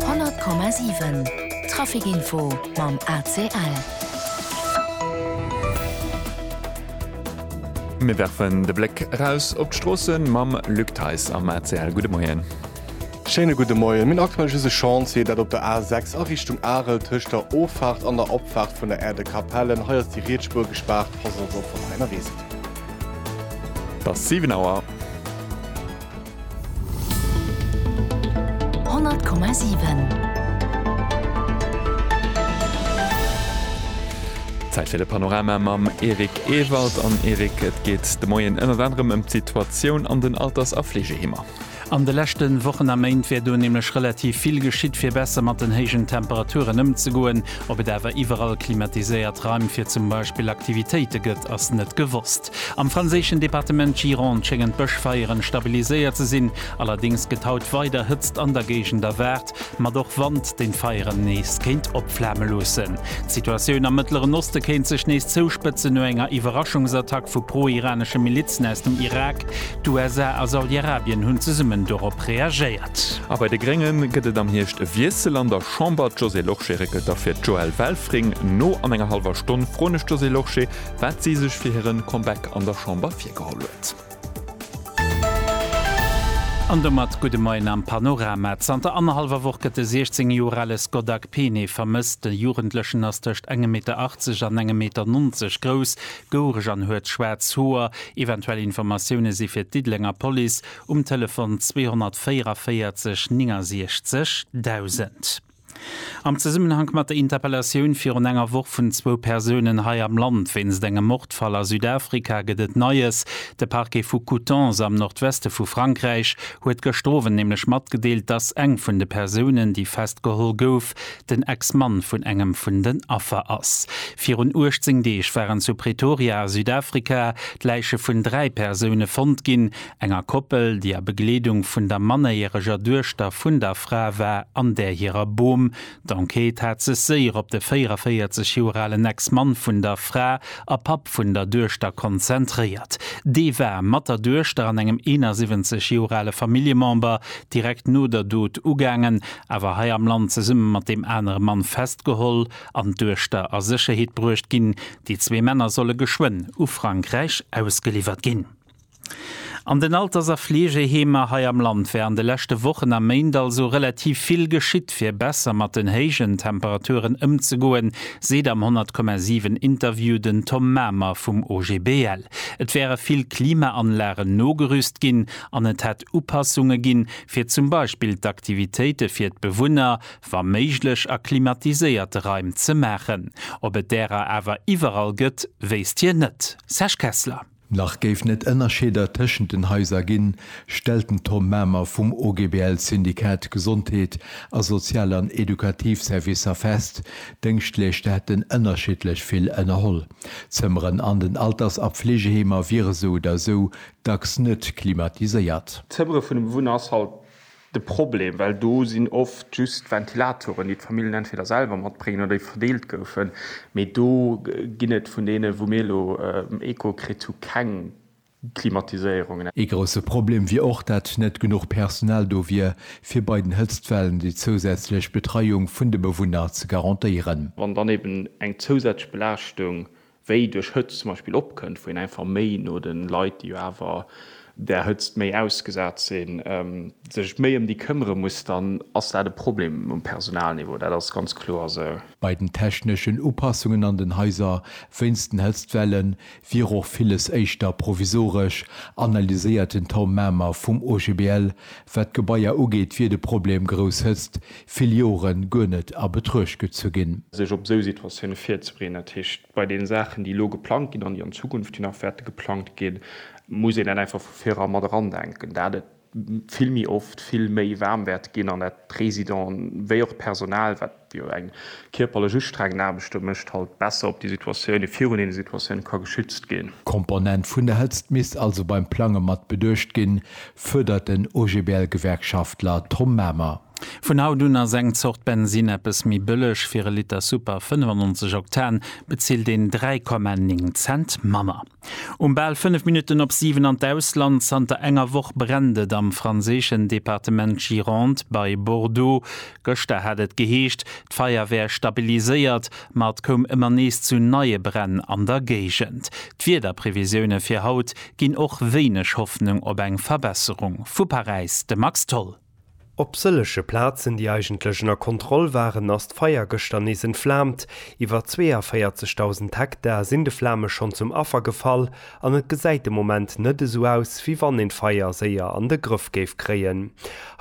100,7 Trafic Info mam ACL. Mir werfen de Bléck eraus op d'Stroosse mam Luc Theis am ACL. Gudde Moien. Schéine gudde Moien. Mir hunn aktuell just e Chantier, dat op der A 6 a Richtung Arel tëscht der Offaart an der Opfaart vun der Aire de Capellen. Hei ass déi riets Spuer gespaart. Pass also op, wann der hei ënnerwee sidd. Et ass 7 Auer. Zäit fir de Panorama mam Eric Ewald. An Eric, et geet de Moien ënnert anerem ëm d'Situatioun an den Alters a Fleegeheemer. An de leschte Wochen a Méint wär do nämlech relativ vill geschitt, fir besser mat den héijen Temperaturen ëmzegoen. Ob et awer iwwerall klimatiséiert Raim fir zum Beispill Aktivitéite gëtt, ass net gewosst. Nord-Est. Am franséischen Departement Gironde schéngen d'Bëschfeieren stabiliséiert ze sinn, allerdéngs gëtt haut weider Hëtzt an der Géigend erwaart, mat och Wand, deen d'Feieren nees kéint opflame loossen. D'Situatioun am Mëttleren Oste kéint sech nees zouspëtzen no enger Iwwerraschungsattack vu pro-iranesche Milizen aus dem Irak. D'USA a Saudi-Arabien hunn zesummen dorop reagéiert. A bei de Grénge gëtt et am Hierscht e Wiessel an der Chamber, D'Josée Lorsché réckelt da fir d'Joëlle Welfring no. An enger hallwer Stonn froen ech d'Josée Lorsché, wat si sech fir hiren Comeback an der Chamber virgeholl huet. An domat gudde Moien am Panorama. Zanter annerhallwer Woch gëtt de 16 Joer ale Scott Akpene vermësst. De Jugendlechen ass tëscht engem Meter 80 an engem Meter 90 grouss, gouereg an huet schwaarz Hoer. Eventuell Informatioune si fir d'Diddelenger Police um Telefon 2444 69 1000. Am Zesummenhank mat der Interpellatioun virun enger Woch vun zwou Persounen hei am Land wéinst engem Mordfall a Südafrika gëtt et Neies. De Parquet vu Coutances am Nordweste vu Frankräich huet gëschter Owend nämlech matgedeelt, dass eng vun de Persounen, déi festgeholl gouf, den Ex-Mann vun engem vun den Affer ass. Virun 18 Deeg waren zu Pretoria a Südafrika d'Läiche vun dräi Persoune fonnt ginn. enger Koppel, déi a Begleedung vun der mannerjäreger Duechter vun der Fra war, an där hirer Bom. D'Enquête hat sech séier op de 44 Joer alen Ex-Mann vun der Fra a Papp vun der Duechter konzentréiert. Dee war mat der Duechter an engem 71 Joer ale Familljemember direkt no der Dot ugaangen, awer hei am Land zesumme mat deem anere Mann festgeholl an d'Duechter a Sécherheet bruecht ginn. Déi zwee Männer solle geschwënn u Frankräich ausgeliwwert ginn. An den Alters a Fleegeheemer hei am Land wär an de leschte Wochen a Méint also relativ vill geschitt, fir besser mat den héijen Temperaturen ëmzegoen, seet am 100,7 Interview den Tom Mamer vum OGBL. Et wäre vill Klimaanlagen nogerüst ginn an et hätt Upassunge ginn, fir zum Beispill d'Aktivitéite fir d'Bewunner, wa méiglech a klimatiséierte Raim ze maachen. Ob et därer awer iwwerall gëtt, wéisst hien net. Serge Kessler. Nach géif net ënnerscheeder tëschent den Haiser ginn, stellt den Tom Mamer vum OGBL Syndikat Gesondheet a Sozial an Edukativ Servicer fest. D'Dëngschtleeschter hätten ënnerschiddlech vill ënnerholl. D'Zëmmeren an den Alters a Fleegeheemer wiere sou oder sou dacks net klimatiséiert. D'Zëmmere vun dem Wunnhaus halt de Problem, well do sinn oft just Ventilatoren, déi d'Famillen entweder selwer matbréngen oder déi verdeelt goufen, mee do ginn et vun deene wou mir elo Echo kritt hu keng Klimatiséierungen. Ee grousse Problem wier och, dat net genuch Personal do wier, fir bei den Hëtztwellen déi zousätzlech Betreiung vun de Bewunner ze garantéieren. Wann dann eben eng zousätzlech Belaaschtung wéi duerch Hëtzt zum Beispill opkënnt, wou een einfach méi no de Leit, déi jo awer där Hëtzt méi ausgesat sinn, sech méi ëm déi këmmere muss, dann ass dat e Problem um Personalniveau. Dat ass ganz kloer esou. Bei den techneschen Upassungen an den Haiser wéinst den Hëtztwelle wier och villes éischter provisoresch, analyséiert den Tom Mamer vum OGBL. Wat d'Gebaier ugeet, wier de Problem grouss Hëtzt, vill Jore guer net a Betruecht gezu ginn. Sech op esou Situatioune virzebereeden, dat heescht bei deene Saachen, déi elo geplangt ginn an déi an Zukunft jo nach wäerte geplangt ginn, muss een dat einfach vu viru mat erandenken, dat et vill méi oft vill méi waarm wäert ginn an dat d'Residenten wéi och d'Personal, wat jo eng kierperlech ustrengend Aarbecht do mécht, halt besser op déi Situatioune virun deene Situatioune ka geschützt ginn. D'Komponent vun der Hëtzt misst also beim Plange mat beduecht ginn, fërdert den OGBL-Gewerkschaftler Tom Mamer. Vun haut un ass eng Zort Bensinn eppes méi bëlleg. Fir e Liter Super 95 Oktan bezilt een 3,9 Cent manner. Um bal 5 Minutten op 7 an d'Ausland, Zanter enger Woch brennt et am franséischen Departement Gironde bei Bordeaux. Gëschter hat et geheescht, d'Feier wär stabiliséiert, ma et koum ëmmer nees zu neie Bränn an der Géigend. D'Wiederprevisioune fir haut, ginn och wéineg Hoffnung op eng Verbesserung. Vu Paräis de Max Tholl. Op sëllege Plazen, déi eigentlech ënner Kontroll waren, ass d'Feier gëschter nees entflaamt. Iwwer 42.000 Hektar sinn de Flame schonn zum Affer gefall an et gesäit de Moment net esou aus, wéi wann een d'Feier séier an de Grëff géif kréien.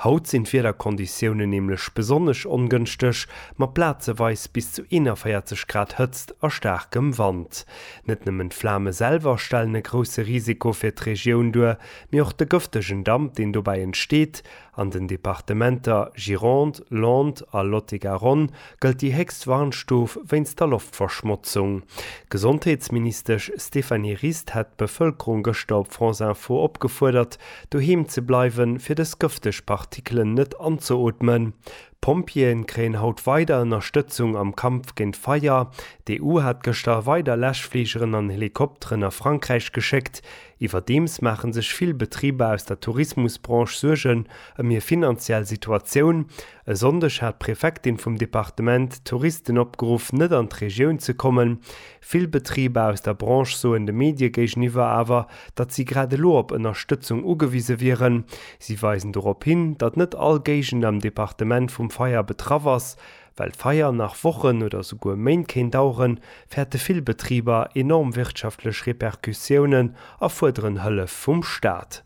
Haut sinn d'Wiederkonditiounen nämlech besonnesch ongënschteg, mat plazeweis bis zu 41 Grad Hëtzt a staarkem Wand. Net nëmmen d'Flame selwer stellen e grousse Risiko fir d'Regioun duer, mee och de gëftegen Damp, deen dobäi entsteet. An den Departementer Gironde, Landes a Lot-et-Garonne gëllt déi héchst Warnstuf wéinst der Loftverschmotzung. D'Gesondheetsministesch Stéphanie Rist hat d'Bevëlkerung gëschter op France Info opgefuerdert, doheem ze bleiwen, fir dës gëfteg Partikelen net anzeootmen. D'Pompjeeë kréien haut weider Ënnerstëtzung am Kampf géint Feier. D'EU hat gëschter weider Läschfligeren an Helikopteren a Frankräich geschéckt. Iwwerdeems maache sech vill Betriber aus der Tourismusbranche Suergen ëm hir finanziell Situatioun. E Sonndeg hat d'Prefektin vum Departement d'Touristen opgeruff, net an d'Regioun ze kommen, Vill Betriber aus der Branche soen de Medie géigeniwwer awer, datt si grad elo op Ënnerstëtzung ugewise wieren. Si weisen dorop hin, datt net all Géigend am Departement vum Feier betraff ass. Well d'Feier nach Wochen oder souguer Méint kéint daueren, fäerte vill Betriber enorm wirtschaftlech Repercussiounen a fuerderen Hëllef vum Staat.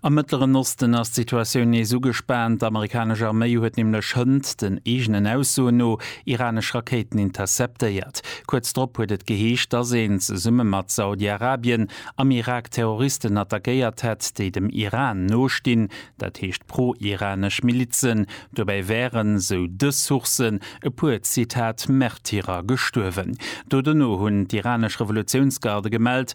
Am Mëttleren Osten ass d'Situatioun nees ugespaant. D'Amerikanesch Arméi huet nämlech hënt den eegenen Aussoen no iranesch Rakéiten interceptéiert. Kuerz drop huet et geheescht, dass een, zesumme mat Saudi-Arabien, am Irak Terroristen attackéiert hätt, déi dem Iran nostinn, dat heescht pro-iranesch Milizen. Dobäi wären, sou dës Sourcen, e puer, Zitat, Märtyrer gestuerwen. Do dono hunn d'iranesch Revolutiounsgarde gemellt,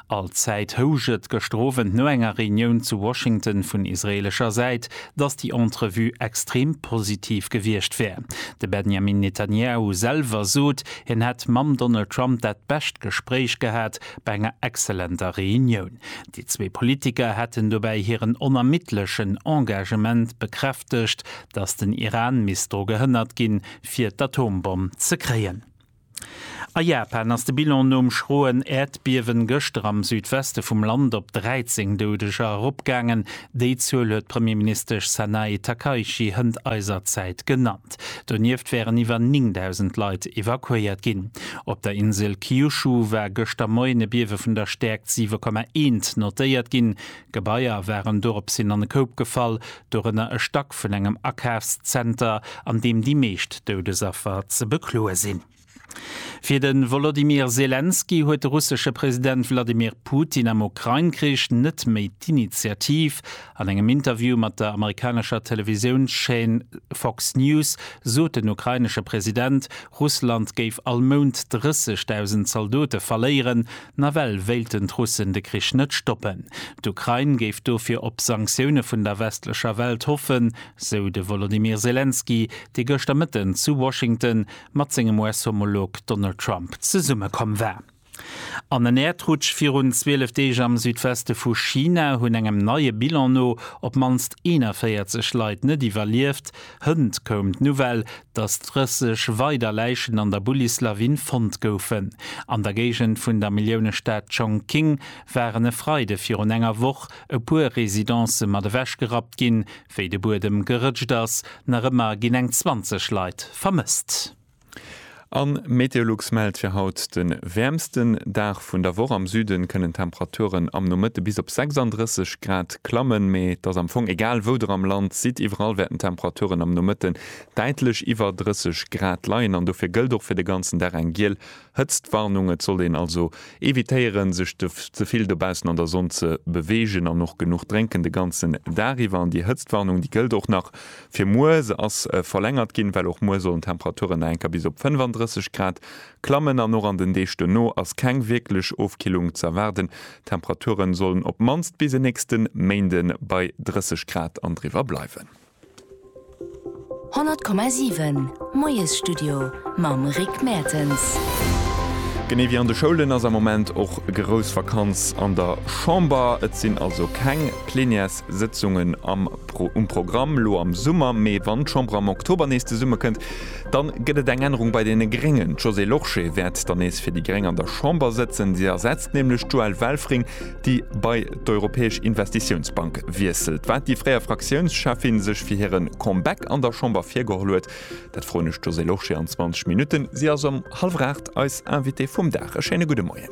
Allzäit housch et gëschter Owend no enger Reunioun zu Washington vun israeelescher Säit, datt déi Entrevue extrem positiv gewiescht wär. De Benjamin Netanyahu selwer sot, hien hätt mam Donald Trump dat bescht Gespréich gehat bei enger exzellenter Reunioun. Déi zwee Politiker hätten dobäi hiren onermiddlechen Engagement bekräftegt, datt den Iran misst dru gehënnert ginn, fir d'Atombomm ze kréien. A Japan ass de Bilan nom schroen Äerdbiewen gëschter am Südweste vum Land op 13 Doudeger eropgaangen. Déi Zuel huet d'Premierministesch Sanae Takaichi hënt eiser Zäit genannt. Donieft wären iwwer 9.000 Leit evakuéiert ginn. Op der Insel Kyushu war gëschter Moien e Biewe vun der Stäerkt 7,1 notéiert ginn. Gebaier waren doropshin an e Koup gefall, dorënner e Stack vun engem Akafszenter, an deem déi meescht Doudesaffer ze bekloe sinn. Fir de Wolodymyr Selenskyj huet de russesche President Wladimir Putin am Ukrain-Krich net méi d'Initiativ. An engem Interview mat der amerikanescher Televisiounschaîne Fox News sot den ukrainesche President, Russland géif all Mount 30.000 Zaldote verléieren, nawell wéilten d'Russen de Krich net stoppen. D'Ukrain géif dofir op Sanktioune vun der westlecher Welt hoffen, sou de Wolodymyr Selenskyj, dee gëschter Mëtten zu Washington mat sengem US-Homolog Donald Trump zesummekomm war. An en Äerdrutsch virun 12 Deeg am Südweste vu China hunn engem neie Bilan no op d'mannst 41 Leit net iwwerlieft. Hënt koum d'Nouvelle, datt 30 weider Läichen an der Bullislawin fonnt goufen. An der Géigend vun der Milliounestad Chongqing waren e Freide virun enger Woch e puer Residencë mat ewechgerappt ginn, wéi de Buedem gerëtscht ass. Nach ëmmer ginn eng 20 Leit vermësst. An Meteolux mellt fir haut de wäermsten Dag vun der Woch. Am Süden kënnen d'Temperaturen am Nomëtte bis op 36 Grad klammen, mee et ass am Fong egal wou der am Land sidd, iwwerall wäerten d'Temperaturen am Nomëtten däitlech iwwer 30 Grad leien an dofir gëllt och fir de ganzen Dag eng giel Hëtztwarnung, Et sollt een also evitéieren, sech ze vill dobaussen an der Sonn ze beweegen an och genuch drénken de ganzen Dag iwwer. An déi Hëtztwarnung, déi gëllt och nach fir muer. Se ass verlängert ginn, well och muer sollen d'Temperaturen nach enker bis op 35 Grad klammen. An och an den Deeg duerno ass keng wierklech Ofkillung ze erwaarden. D'Temperaturen sollen op mannst bis en nächste Méinde bei 30 Grad an driwwer bleiwen. 100,7, Moiesstudio mam Rick Mertens. Genee wéi an de Schoulen ass am Moment och grouss Vakanz an der Chamber. Et sinn also keng Plenières-Sëtzungen am um Programm elo am Summer. Mee wann d'Chamber am Oktober nees zesummekënnt, dann gëtt et eng Ännerung bei deene Gréngen. D'Josée Lorsché wäert dann nees fir déi Gréng an der Chamber sëtzen. Si ersetzt nämlech d'Joëlle Welfring, déi bei d'Europäesch Investitiounsbank wiesselt. Wat déi fréier Fraktiounscheffin sech fir hiren Comeback an der Chamber virgeholl huet, dat froen ech d'Josée Lorsché an 20 Minutten. Si ass ëm hallwer 8 eis Invitée vum Dag. E schéine gudde Moien.